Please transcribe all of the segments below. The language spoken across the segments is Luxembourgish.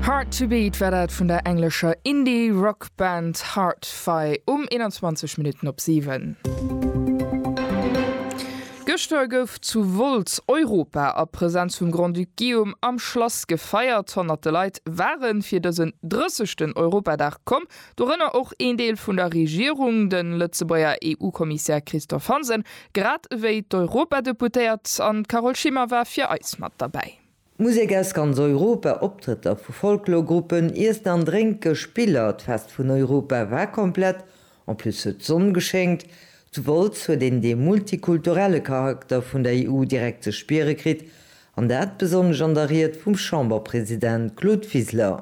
Hard To Beat war dat vun der englescher Indie-Rock-Band Hard-Fi um 21 Minutten op 7. Gëschter gouf zu Wolz Europa a Presenz vum Grand-Duc Guillaume am Schlass gefeiert. Honnerte Leit ware fir dësen 30. Europadag komm, dorënner och een Deel vun der Regierung, de Lëtzebuerger EU-Kommissär Christophe Hansen, grad ewéi d'Europadeputéiert an d'Carole Schimmer war fir eis mat derbäi. Musek aus ganz Europa, Optrëtter vu Folklorgruppen, Iessen an Drénke, Spiller, d'Fest vun Europa war komplett, en plus huet d'Sonn geschéngt. Zu Wolz huet een dee multikulturelle Charakter vun der EU direkt ze spiere kritt, an dat besonnesch an der Ried vum Chamberpresident Claude Wiseler.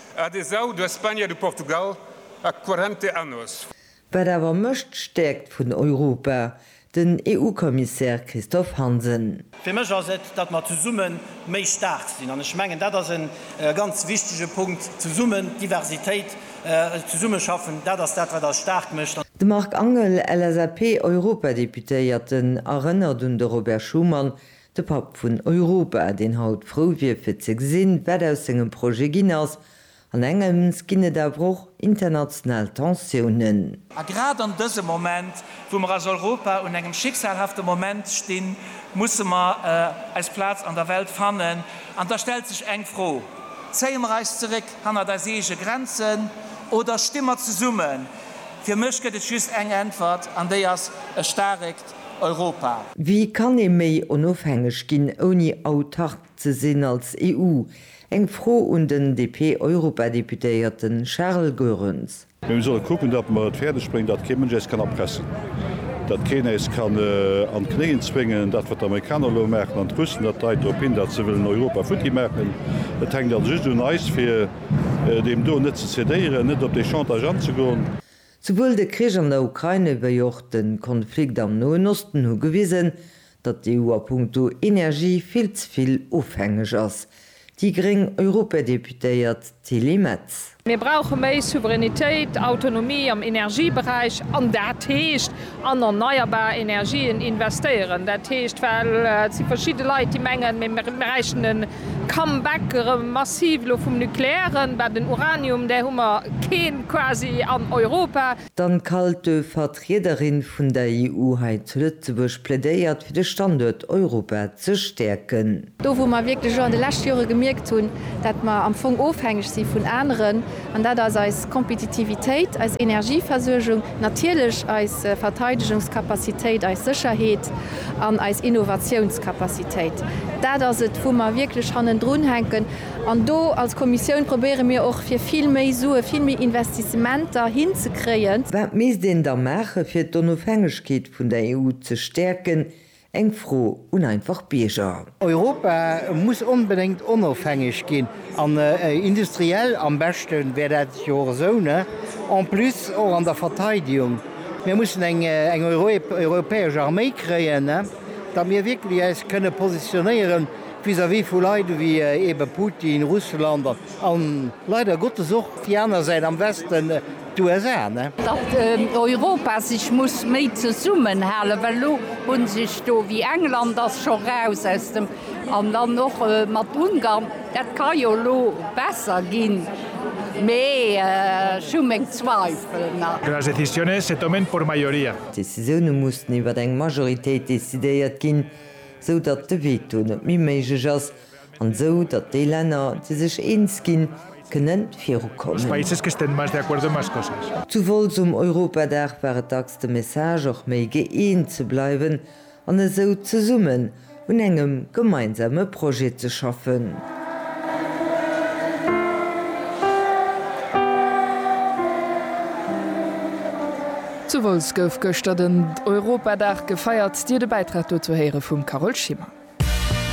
Adesau da Spagna de Portugal a quarante annos. Wat awer mécht d'Stäerkt vun Europa? Den EU-Kommissär Christophe Hansen. Fir mech ass et, datt mer zesumme méi staark sinn. An ech mengen, dat ass e ganz wichtege Punkt, zesummen, Diversitéit, zesummeschaffen, dat ass dat, wat eis staark mécht. De Marc Angel, LSAP-Europadeputéierten, erënnert un de Robert Schuman, De Papp vun Europa, deen haut frou wier fir ze gesinn, wat aus sengem Projet ginn ass. An engems ginn et awer och international Tensiounen. A grad an dësem Moment, wou mer als Europa un engem schicksalhafte Moment stinn, musse mer eis Plaz an der Welt fannen. An da stellt sech eng Fro, Zéie mer eis zeréck hannert eis eege Grenzen oder sti mer zesummen? Fir mech gëtt et just eng Äntwert, an déi ass e staarek Europa. Wéi kann ee méi onofhängeg ginn, ouni autark ze sinn als EU? Eng Fro un den DP-Europadeputéierte Charles Goerens. Mee mir solle kucken, datt mer et fäerdeg bréngen, datt kee Mënsch äis kann erpressen, datt keen äis kann an d'Knéien zwéngen. Dat, wat d'Amerikaner elo maachen an d'Russen, dat deit drop hin, datt se wëllen Europa futti maachen. Et hänkt also just un eis, fir deem do net ze cedéieren, net op déi Chantage anzegoen. Souwuel de Krich an der Ukraine wéi och de Konflikt am Noen Osten hu gewisen, datt d'EU a punkto Energie vill ze vill ofhängeg ass. Déi gréng Europadeputéiert Tilly Metz. Mir brauche méi Souveränitéit, Autonomie am Energieberäich, an dat heescht an erneierbar Energien investéieren, dat heescht, well et si verschidde Leit, déi mengen, mir bräichten e Comeback erëm massiv elo vum Nukleären, mä den Uranium, där hu mer keen quasi an Europa. D'Anne Kalte, Vertriederin vun der EU hei zu Lëtzebuerg, plädéiert fir de Standuert Europa ze stäerken. Do wou mer wierklech och an de leschte Jore gemierkt hunn, dat mer am Fong ofhängeg si vun aneren, an dat ass eis Kompetitivitéit, eis Energieversuergung, natierlech eis Verteidegungskapazitéit, eis Sécherheet an eis Innovatiounskapazitéit, dat ass et wou mer wierklech hannendrun hänken. An do als Kommissioun probéiere mir och fir vill méi Sue, vill méi Investissementer hinzekréien. Wat misst een da maache fir d'Onofhängegkeet vun der EU ze stäerken, Eng Fro un einfach Bierger. Europa muss onbedéngt onofhängeg ginn an industriell, am beschte wär dat jo och esou, en plus och an der Verteidigung. Mir mussen eng europäesch Arméi kréien, datt mir wierklech eis kënne positionéiere vis-à-vis vu Leit ewéi eebe Putin, Russland. A leider Gottes och déi aner Säit am Westen, d'USA. Datt Europa sech muss méi zesummen halen, well elo hu sech do, wéi England ass scho raus aus dem, an dann och mat Ungarn, dat ka jo elo besser ginn, mee ech hu meng Zweifel nach. Que las decisiones se tomen por mayoría. D'Decisioune mussen iwwer eng Majoritéit decidéiert ginn, sou datt de Veto net méi méiglech ass. an esou datt déi Länner, déi sech eens ginn, kënne virukommen. Zouwolls um Europadag war et dacks de Message, och méi gëeent ze bleiwen an esou zesummen un engem gemeinsame Projet ze schaffen. Zouwolls gouf gëschter den Europadag gefeiert. Dir de Bäitrag dozou héiere vum Carole Schimmer.